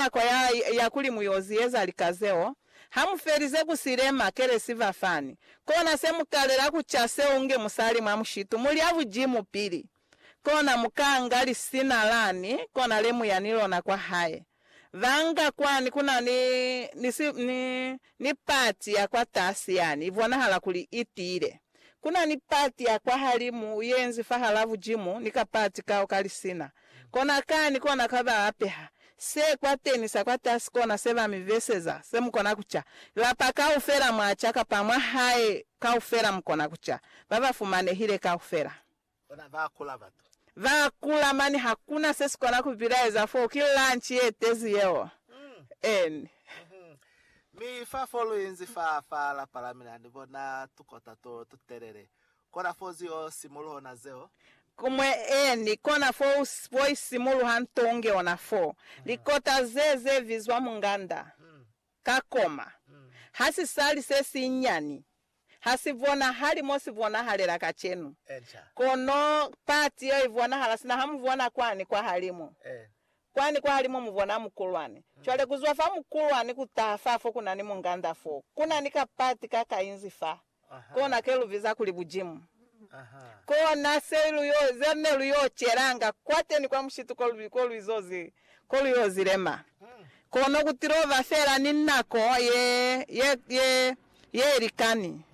nako ya, ya kuli mu yo zieza lika zeo, ha mu felize ku silema, kelesi fa fani, kona se mu kalela ku ca seo nge musali mwa mushitu, mu lya bujimu pili, kona mu kanga lisina lani, kona le mu ya ni lona kwa hae. Ba nga kwani, ku na ni, ni si, ni, Ni pati ya kwatasi yani ibonahala kuli itiile. Kuna ni pati ya kwahalimu yenzi fahalaa bujimu ni ka pati kao ka lisina. Kona kani kona ka ba apeha. Se kwateni sa kwatasi kona se ba mi beseza, se mukona kuca. Lapa kaufela mwaca kapa mwahae kaufela mukona kuca. Baba fumanehile kaufela. Bona ba kula batu. Ba kula mani hakuna se sikona ku bilaeza foo ki lunch ye tezi yeo en. Mi fa fo lu inzi fa fa lapa la mina ni bona tukota to tu telele kona fo zu yo simuluho na zeo. Kumwe en kona fo u fo isimuluha nto unge ona foo likota ze ze vizwa munganda Ka koma, ha si sali se sinyani, ha si bonahali mo si bonahalela kacenu, kono pati yeo i bonahala sina ha mu bona kwani kwahalimu. Kwani kwahalimu mu bona mukulwani. Cwale, ku zwa fa mukulwani ku taha fa fo ku na ni munganda foo, ku na ni kapati ka kainzi faa. Kona ke lu biza kuli bujimu. Kona se lu yo, ze ne lu yo celanga kwateni kwa mushitu ko lu, ko lu izo zi, ko lu yo zi lema. Kono ku tilo ba fela ni nako ye, ye, ye, ye ilikani.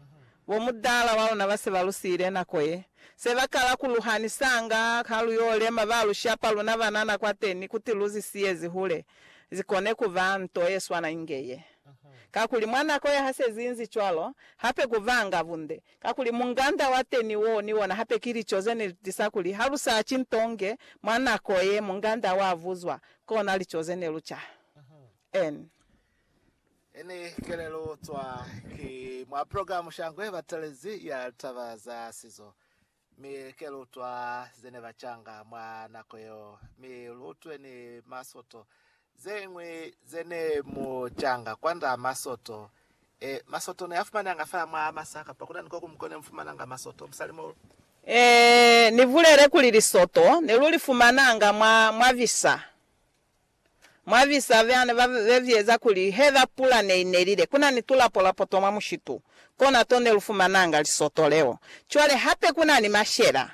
Bo mudala wa luna ba se ba lu siile nako ye. Se ba kala ku lu hanisanga, ha lu yo lema, ba lu shapa luna banana kwateni, kuti lu zi siye zi hule, zi kone kuba nto ye swana inge ye. Kakuli mwa nako ya hasezi inzi cwalo, hape ku vanga bunde, kakuli munganda wa teni woo ni wona hape ki lico ze ne li tisa kuli ha lu sa ci nto nge mwa nako ye munganda wa vuzwa, kona lico ze ne lu ca. N. Ini kelelo cwa ki mwa program sha ngwe batelezi ya taba za sizo. Mi ke lutwa ze ne ba canga mwa nako yeo, mi lutwe ni masoto zeñwi ze ne mu canga kwand'a masoto. E, masoto ne a fumananga fela mwa masa, kapa kuna ni ko kuñwi ko ne mu fumananga masoto, musali mo. E, ni bulele kuli lisoto ne lu li fumananga mwa, mwa visa. Mwa visa vya ne ba veza kuli heba pula ne i nelile, ku na ni tulapolapo twa mwa mushitu, kona to ne lu fumananga lisoto leo. Cwale hape ku na ni mashela.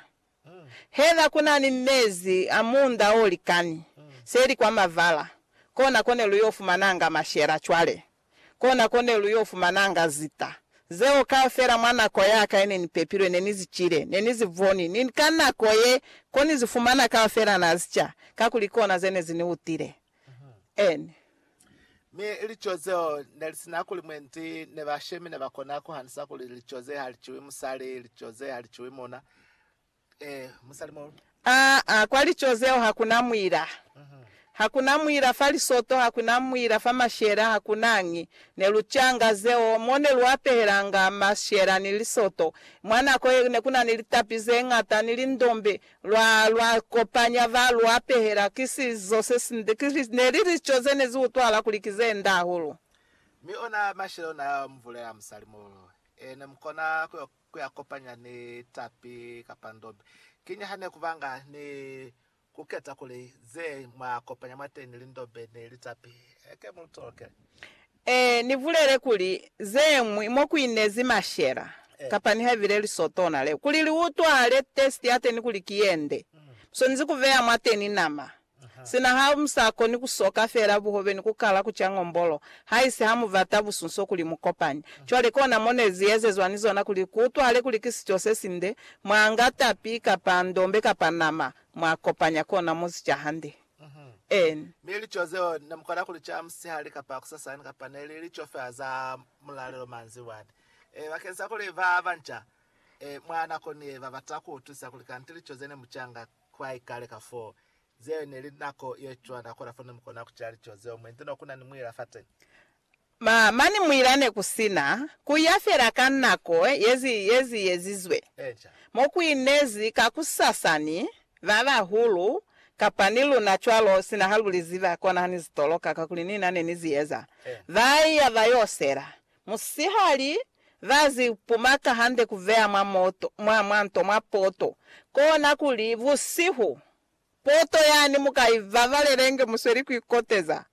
Heba ku na ni mezi a muunda o likani, se li kwa mavala, kona ko ne lu yo fumananga mashela cwale. Kona ko ne lu yo fumananga zita zeo kaufela. Mwa nako ya ka ye ne ni pepilwe, ne ni zi cile, ne ni zi boni, ni ka nako ye, ko ni zi fumana kaufela na zi ca, kakuli kona ze ne zi ni utile. N. Mi lico zeo ne li sina kuli mwendi, ne bashemi ne ba kona ku hanisa kuli lico ze ha li ciwi musali, lico ze ha li ciwi muna. Aa, kwa lico zeo hakuna mwila. Hakuna mwila fa lisoto, hakuna mwila fa mashela, hakunañi. Ne lu canga zeo, mo ne lu apehelanga mashela ni lisoto. Mwa nako ye ne kuna ni litapi zeñata ni lindombe, lwa, lwa kopanya ba lu apehela. Ki sizo sesinde, ki li, ne li lico ze ne zi utwahala kuli ki ze nde hahulu. Mi ona mashela ona ya mvula ya musalimulu, e ne mu kona ku yo ku ya kopanya ni tapi kapa ndobe. Kiñi ha ne ku banga ni ku keta kuli ze mwa kopanya mwateñi li ndobe ni li tapi heke mu lu tolokele? Ee, ni bulele kuli ze ñwi mo ku inezi mashela kapa nihaibile lisotona leo. Kuli li utwale testi ya teñi kuli ki ye nde, mu swanezi ku beya mwateñi nama Sina ha mu sa koni ku soka fela buhobe ni ku kala ku ca ngombolo, haisi ha mu bata busunso kuli mu kopani. Cwale kona mo ne zi ezezwa ni zona kuli ku utwahale kuli ki sico se sinde, mwa nga tapi, kapa ndombe, kapa nama, mwa kopanya kona mo zi ca hande. En. Mi lico zeo ne mu kona ku li ca musihali kapa kusasani, kapa ne li lico fela za mulalelo manzibwani. E, bakeñisa kuli ba banca, e, mwa nako ni ye, ba bata ku utwisisa kuli kanti lico ze ne mu ca nga Kwai kale ka foo, zeo ne li nako ye cwa, nako la fo ne mu kona ku ca lico zeo mwe nto no ku na ni muila fateñi. Ma, mani muila ne ku si na, ku ya fela ka nako ye zi, ye zi ezizwe. Eeca. Mo ku inezi kakusasa ni ba bahulu, kapa ni luna cwalo, sina ha lu li ziba, kona ha ni zi toloka, kakuli ni na ne ni zi eza. Ba iya ba yo sela. Musihali, ba zi pumaka hande ku veya mwa moto, mwa, mwa nto, mwa poto. Kona kuli, busihu, poto yani mu ka i babalela inge mu sweli ku ikoteza.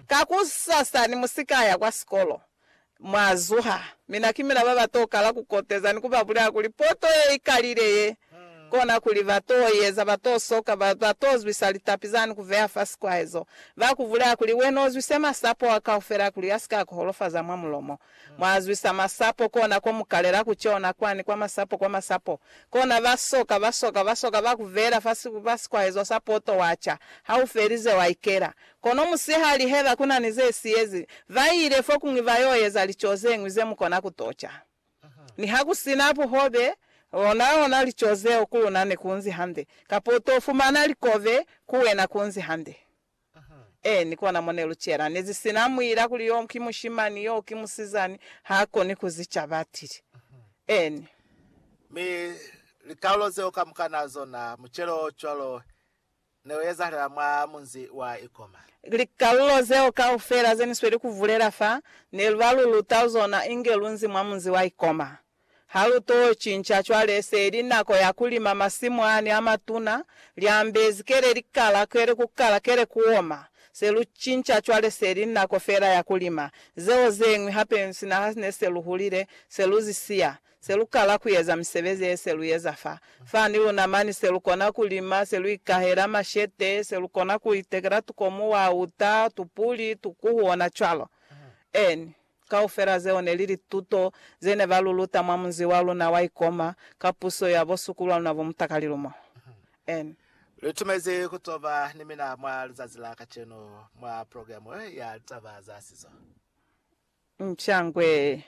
Kakusasa ni mu si ka ya kwa sikolo, mwa zuha, mina ki mina ba ba to kala ku koteza ni ku ba bulela kuli, Poto ye i kalile ye! kona kuli ba to eza, ba to soka, ba, ba to zwisa litapi zani ku veha fa sikwahezo, ba ku vulela kuli, Wena u zwise masapo a kaufela kuli a si ka ku holofaza mwa mulomo. Mwa zwisa masapo, kona ko mu kalela ku cona kwani, kwa masapo, kwa masapo. Kona ba soka, ba soka, ba soka, ba ku veela fa, fa sikwahezo sa poto, wa ca. Ha u felize, wa ikela. Kono musihali, heba ku na ni ze siyezi, ba ile fokuñwi ba yo eza lico zeñwi ze mu kona ku to ca. Nihakusina buhobe, onaona lico zeo ku luna nekunzi hande, kapa utofumana likobe ku wena kunzi hande. Eeni, kona mo nelucela. Nezisina muila kuli yo ki mushimani, yo ki musizani, haakoni kuzica, batili. Eeni. Mi likaulo zeo kamukana zona, mucelo o cwalo, ne u ezahalela mwa munzi wa Ikoma. Likalulo zeo kaufela ze ni sweli ku bulela fa, ne lu ba lu luta zona inge lu nzi mwa munzi wa Ikoma. Ha lu t'o cinca cwale, se li nako ya ku lima masimu ani a matuna, liambezi kele li kala, kele ku kala, kele ku oma. Se lu cinca cwale, se li nako fela ya ku lima. Zeo ze ñwi hape, sina ha ne se lu hulile, se lu zi siya. Se lu kala ku eza misebezi ye se lu eza fa, fa ni luna mani, se lu kona ku lima, se lu ikahela mashete, se lu kona ku itekela tukomu, wauta, tupuli, tukuhu, ona cwalo. Eeni. Kaufela zeo ne li lituto ze ne ba lu luta mwa munzi wa luna wa Ikoma, ka puso ya bo sukulwa luna bo mutakalilumo. Eeni. Lu itumezi ku to ba ni mina mwa lizazi la kacenu mwa programe ya litaba za sizo. Nchangwe.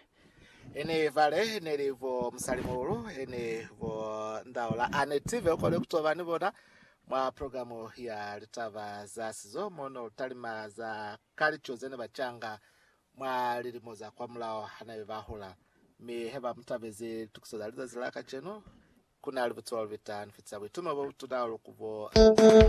Ene Vale neli vo musali muhulu ene vo ndaula ane tive ukole kutoba ni bona mwa programu ya litaba za sizo mo no talima za kalico zene bacanga mwa lilimo za kwa mulao hanabe ba hula. Mi he ba mutabezi litukiso za lizazi la kacenu, kunali butuba lubita ni fitisa buitumo bo butuna hahulu ku bo.